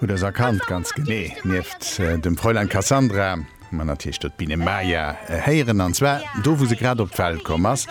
Hutt ders erkannt, ganz genee. Nieft dem Fräulein Cassandra hu mer natierlech do d'Biene Maya héieren, an zwar do, wou se grad op d'Welt komm ass.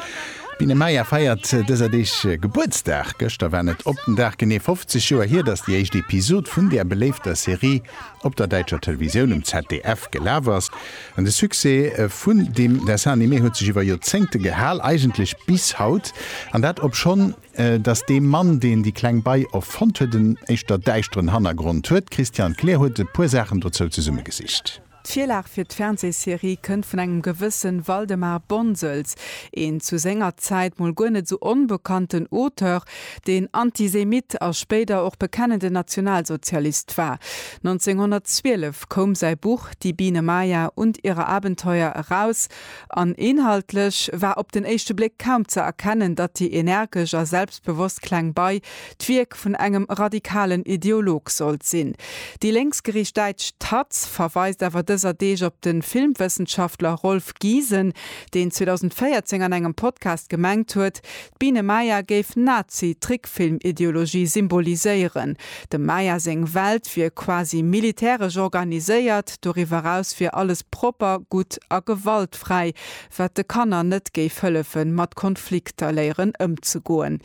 D'Biene Maya feiert dëser Deeg Gebuertsdag. Gëschter war net op den Dag genee 50 Joer hier, datt déi éischt Episod vun där beléifter Serie op der däitscher Televisioun, um ZDF, gelaf ass. An de Succès vun deem Dessin animé huet sech iwwer Joerzéngte gehal, eigentlech bis haut, an dat obschonn, Datt dee Mann, deen déi kleng Bei erfonnt huet, en éischter däischteren Hannergrond huet. D'Christiane Kleer huet e puer Saachen dozou zesummegesicht. D'Virlag fir d'Fernsehserie kënnt vun engem gewësse Waldemar Bonsels, een zu senger Zäit mol guer net esou onbekannten Auteur, deen Antisemitt a spéider och bekennenden Nationalsozialist war. 1912 koum säi Buch Die Biene Maya und ihre Abenteuer eraus. An inhaltlech war op den éischte Bléck kaum ze erkennen, datt déi energesch a selbstbewosst kleng Bei d'Wierk vun engem radikalen Ideolog sollt sinn. Déi lénksgeriicht däitsch taz verweist awer dëser Deeg op de Filmwëssenschaftler Rolf Giesen, deen 2014 an engem Podcast gemengt huet, D'Biene Maya géif Nazi-Trickfilm-Ideologie symboliséieren. Dem Maya seng Welt wier quasi militäresch organiséiert, doriwwer eraus wier alles propper, gutt a gewaltfräi, wat de Kanner net géif hëllefe mat Konflikter léieren ëmzegoen.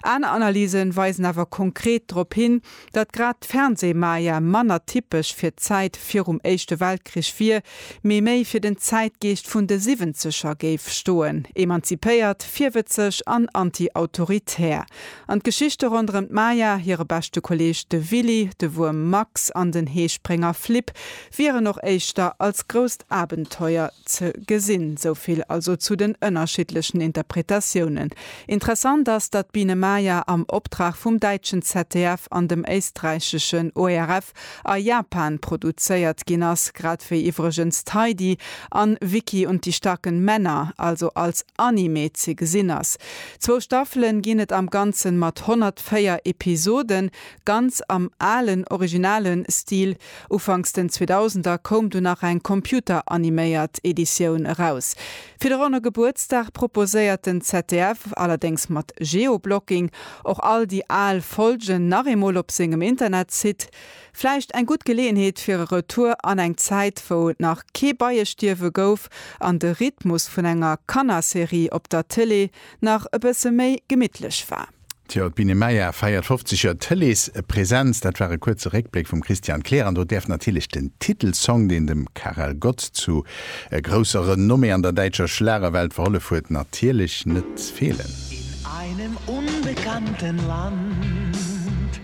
Aner Analyse weisen awer konkret drop hin, Datt grad d'Fernsehmaja manner typesch fir d'Zäit virum Éischte Weltkrich wier, mee méi fir den Zäitgeescht vun de Siwwenzeger géif stoen, emanzipéiert, virwëtzeg an anti-autoritär. An d'Geschichte ronderëm d'Maja, hire beschte Kolleeg de Willy, de Wuerm Max an den Heesprénger Flip wieren och éischter als grousst Abenteuer ze gesinn. Souvill also zu den ënnerschiddlechen Interpretatiounen. Interessant ass, datt d'Biene Maya am Optrag vum däitschen ZDF an dem éisträicheschen ORF a Japan produzéiert ginn ass, grad wéi iwwregens d'Heidi an Vicky und die starken Männer also als Anime ze gesinn ass. Zwou Staffele ginn et am Ganzen mat 104 Episoden, ganz am alen, originale Stil. Ufanks den Zweedausender koum du nach eng computeraniméiert Editioun eraus. Fir de ronne Gebuertsdag proposéiert den ZDF, allerdéngs mat Geoblocking, och all déi al Folgen nach eemol op sengem Internetsite. Vläicht eng gutt Geleeënheet fir e Retour an eng Zäit, wou et nach kee Beiestierwe gouf an de Rhythmus vun enger Kannerserie op der Tëlee nach e bësse méi gemittlech war. Tjo, d'Biene Maya feiert 50 Joer Tëleespresenz. Dat war e kuerze Réckbléck vum Christian Kleer. An do däerf natierlech den Titelsong, deen dem Karel Gott zu grousser Renommée an der däitscher Schlagerwelt verhollef huet, natierlech net feelen. In einem unbekannten Land.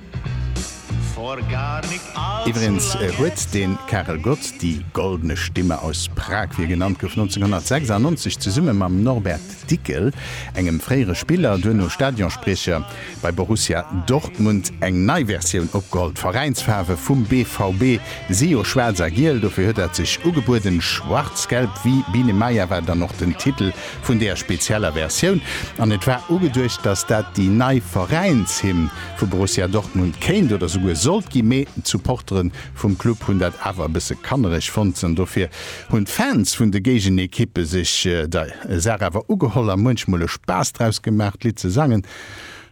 Iwwregens huet de Karel Gott, die goldene Stimme aus Prag wéi e genannt gouf, 1996 zesumme mam Norbert Dickel, engem fréiere Spiller, duerno Stadionspriecher bei Borussia Dortmund, eng nei Versioun opgeholl. D'Veräinsfaarwe vum BVB si jo schwaarz a giel, dofir huet dat sech ugebueden. Schwarzgelb wie Biene Maya war dann och den Titel vun där spezieller Versioun an et war ugeduecht, datt dat déi nei Veräinshymn vu Borussia Dortmund kéint oder souguer sollt gi, mee d'Supportere vum Club hunn dat awer e bësse kannereg fonnt an dofir hunn d'Fans vun de Géigenekippe sech der Saach awer ugeholl a muenchmol e Spaass draus gemaach d'Lidd ze sangen,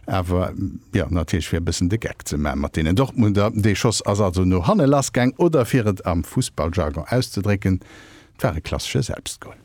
awer jo natierlech fir e bëssen de Geck ze man mat deenen Dortmunder. Dee Schoss ass also no hanne lass gaang oder fir et am Fussballjargon auszedrécken, et war e klassesche Selbstgol.